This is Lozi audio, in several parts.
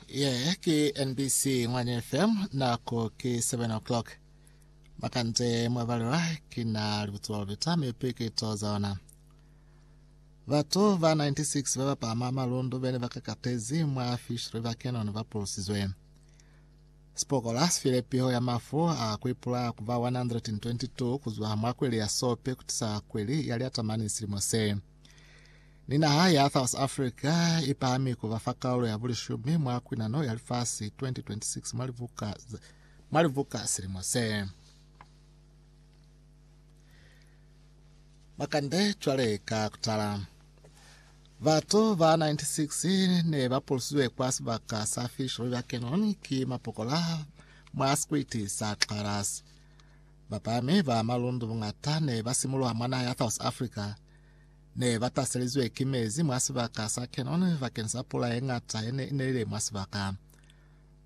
Ye ki NBC Ngwani FM nako ki 7 o'clock. Makande mwa balelwa ki na libutsiwa lubita mi pikiito za ona. Batu ba 96 ba ba pama malundu bene ba kakatezi mwa Fish River Canyon ba pulusizwe. Sipokola sifile piho ya mafu a kuipula ku ba 122 kuzwa mwa kweli ya Sope kutisa kweli ya Liatamani silimo se. Ni naha ya South Africa i pahami kuba fa kaulo ya bulishumi mwa kwinano ya lifasi 2026 mwa libuka, mwa libuka silimo se. Makande cwale ka kutala. Batu ba 96 ne ba pulusizwe kwa sibaka sa Fish River Canyon ki mapokola mwa sikwiti sa Xarasi. Bapami ba malundu buñata ne ba simulwa mwa naha ya South Africa ne ba taselizwe ki mezi mwa sibaka sa Canon bakeni sa pula ye ñata ye ne i nelile mwa sibaka.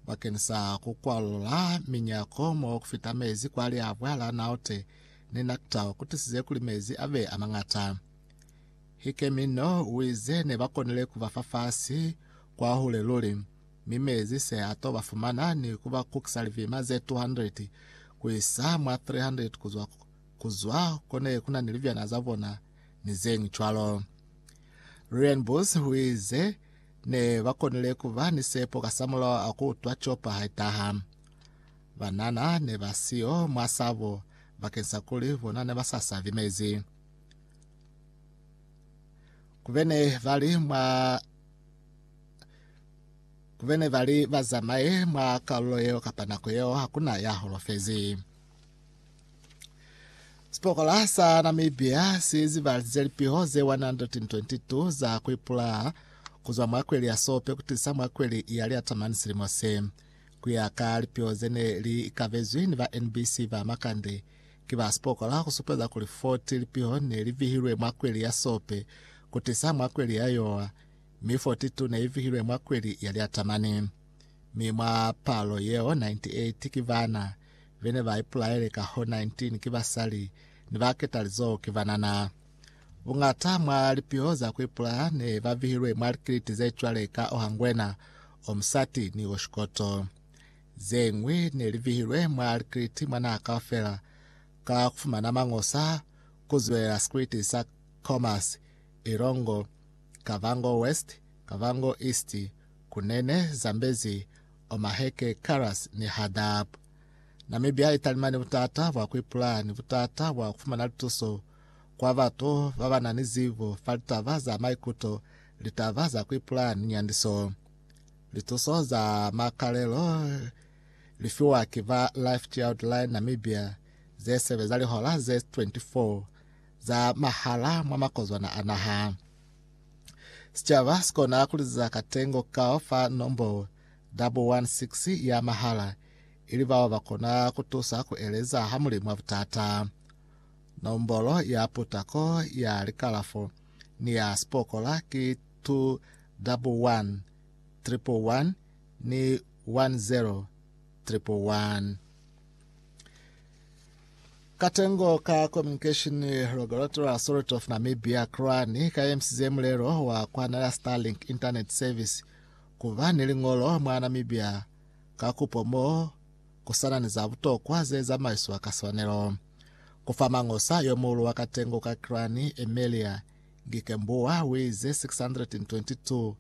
Bakeni sa ku kwalula minyako mo ku fita mezi kwa liabwa la Naute ni Naktau ku tisize kuli mezi a be a mañata. Hikemino u ize ne ba konile ku ba fa fasi kwa hule luli. Mi mezi se ato ba fumana ni ku ba kukisa lipima ze 200 ku isa mwa 300 ku zwa ku zwa ko ne ku na ni libyana za bona ni zeñwi cwalo. Lilian Booth huize, Ne ba konile ku ba ni sepo kasamulaho a ku utwa copa ha itaha. Banana ne ba siyo mwa sabo bakeng sa kuli bona ne ba sa sabi mezi. Ku be ne ba li mwa. bene ba li ba zamaye mwa kalulo yeo kapa nako yeo hakuna ya holofezi. Sipokola sa Namibia si zibalize lipiho ze 122 za kuipula kuzwa mwa kweli ya Sope kutisa mwa kweli ya Liatamani silimo se. Kuya ka lipiho zene li ikavezwi ni ba NBC ba Makande ki ba sipokola kusupeza kuli 40 lipiho ne li vihilwe mwa kweli ya Sope kutisa mwa kweli ya Yowa mi 42 ne i vihilwe mwa kweli ya Lyatamani, mi mwa palo yeo 98 ki bana be ne ba ipulaele, kahoo 19 ki basali, ni ba ketalizoho ki banana. Buñata mwa lipiho za ku ipulaya ne ba vihilwe mwa likiliti ze cwale ka Ohangwena, Omusati, ni Oshikoto. Ze ñwi ne li vihilwe mwa likiliti mwa naha kaufela ka ku fumana mañosa ku zwelela sikiliti sa Khomas, Ilongo, Kavango West, Kavango East, Kunene, Zambezi, Omaheke, Karas ni Hadap. Namibia italimani butata bwa kuipulaya ni butata bwa kufumana lituso kwa batu babanani zibo fa litaba za maikuto, litaba za kuipulaya ni nyandiso. Lituso za makalelo lifiwa ki ba Life Child Line Namibia zesebeza lihola ze 24. za mahala mwa makozwana a naha. Sicaba sikona kuliziza katengo kao fa nombo 116 ya mahala, ili bao bakona kutusa kueleza ha Mulimu wa butata. Nombolo ya putako ya likalafo ni ya sipokola ki 211 111 ni 10 111. Katengo ka Communication Regulatory Authority of Namibia, CRANI, kaemisize mulelo wa kuhanela Starlink Internet Service kuba ni liñolo mwa Namibia ka kupo mo kusana ni za butokwa ze zamaiswa ka swanelo. Kufa mangosa yomuhulu wa katengo ka CRANI, Emelia Ngikembua, uize 622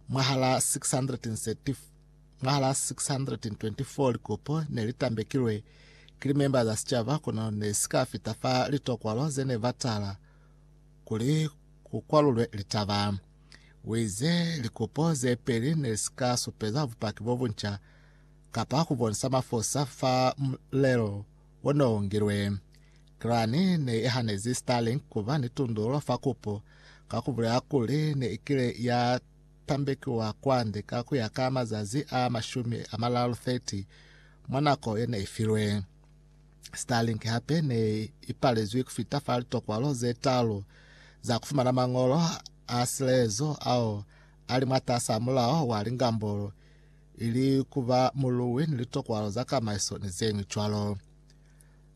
mwahala 634 Mwa la 624 likopo ne li tambekilwe ki limemba za sicaba kono ne si ka fita fa litokwalo ze ne ba tala kuli ku kwalulwe litaba. U ize likopo ze peli ne si ka supeza bupaki bo bunca kapa ku bonisa mafosa fa mulelo o ne u ngilwe. Iran ne i hanezi Starlink ku ba ni tundululo fa kopo ka ku bulela kuli ne i kile ya pambekiwa kwande ka ku ya ka mazazi a mashumi a malalu 30 mwa nako ye ne i filwe. Starlink hape ne i palezwi ku fita fa litokwalo ze talu za ku fumana mañolo a silezo ao a li mwatas'a mulao wa lingambolo, ili ku ba muluwi ni litokwalo za kamaiso ni ze ñwi cwalo.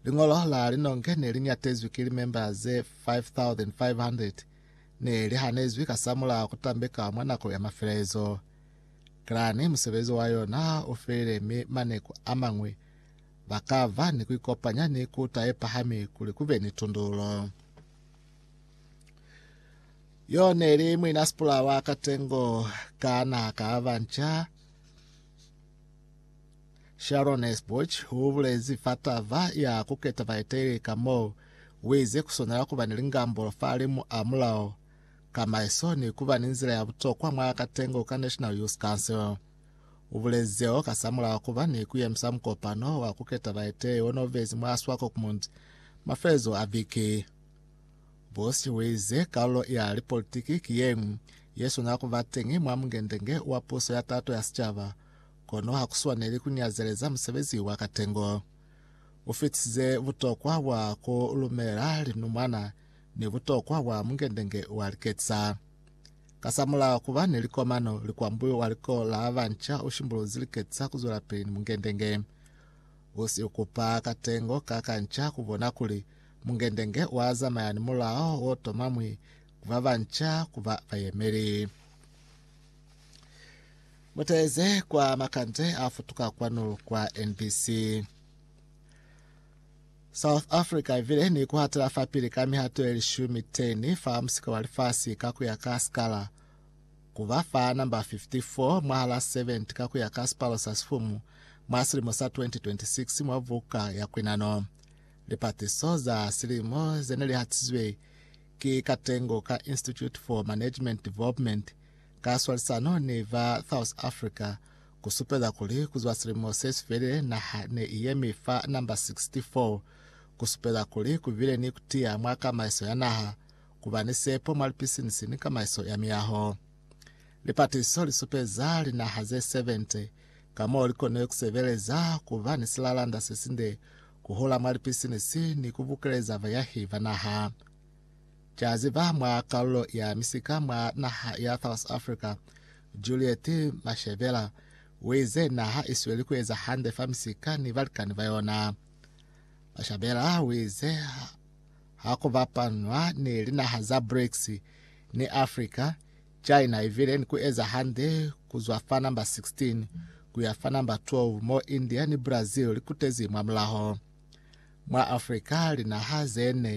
Liñolo la linonge ne li ñatezwi ki limemba ze 5,500 ne li hanezwi kasamulaho ku tambeka mwa nako ya mafelelezo. Klani musebezi wa yona ha u felile mi maneku a mañwi ba ka ba ni ku ikopanya ni kuta ye pahami kuli ku be ni tundulo. Yo ne li muina sipula wa katengo ka naha ka Abanca Sharon Esbuch u bulezi fa tava ya ku keta baeteleli ka mo wize ku swanela kuba ni lingambulo fa limu a mulao, ka maeso ni kuba ni nzila ya butokwa mwa katengo ka National Youth Council. U bulezi zeo kasamulaho kuba ni ku yemisa mukopano wa ku keta baeteleli o no bezi mwa Swakopmund mafelezo a viki. Bush u ize kalulo ya lipolitiki ki yeñwi ye swanela kuba teñi mwa mungendenge wa puso ya tato ya sicaba Kono ha ku swaneli ku nyazeleza musebezi wa katengo. U fitisize butokwa bwa ku lumela linumwana ni butokwa bwa mungendenge wa liketisa. Kasamulaho ku ba ni likomano, likwambuyo wa liko la ba nca u shimbuluzi liketisa ku zwelapili ni mungendenge. U si kupa katengo ka kanca ku bona kuli mungendenge wa zamaya ni mulao wo tomamwi ku ba ba nca ku ba bayemeli. Mutaeze kwa makande a futuka kwanu kwa NBC. South Africa ivile ni kuhatela fapili ka mihato ye lishumi 10 fa musika wa lifasi ka kuya ka skala kuba fa namba 54 mwahala 70 ka kuya ka sipalo sa sifumu mwa silimo sa 2026 mwa buka ya kwinano. Lipatiso za silimo zene lihatizwe Ki katengo ka Institute for Management Development ka swalisano ni ba South Africa ku supeza kuli ku zwa silimo se si felile naha ne i yemi fa namba 64, ku supeza kuli ku bile ni ku tiya mwa kamaiso ya naha, ku ba ni sepo mwa lipisinisi ni kamaiso ya miyaho. Lipatisiso li supeza linaha ze 70 ka mo li konile ku sebeleza ku ba ni silalanda se sinde ku hola mwa lipisinisi ni ku bukeleza bayahi ba naha. Ki a ziba mwa kalulo ya misika mwa naha ya South Africa, Juliet Mashebela, u ize naha i sweli ku eza hande fa misika ni balikani ba yona. Mashabela u ize ha ku bapanwa ni linaha za BRICS ni Africa, China i vile ni ku eza hande ku zwa fa namba 16 ku ya fa namba 12 mo India ni Brazil li kutezi mwamulaho. Mwa Afrika, linaha ze ne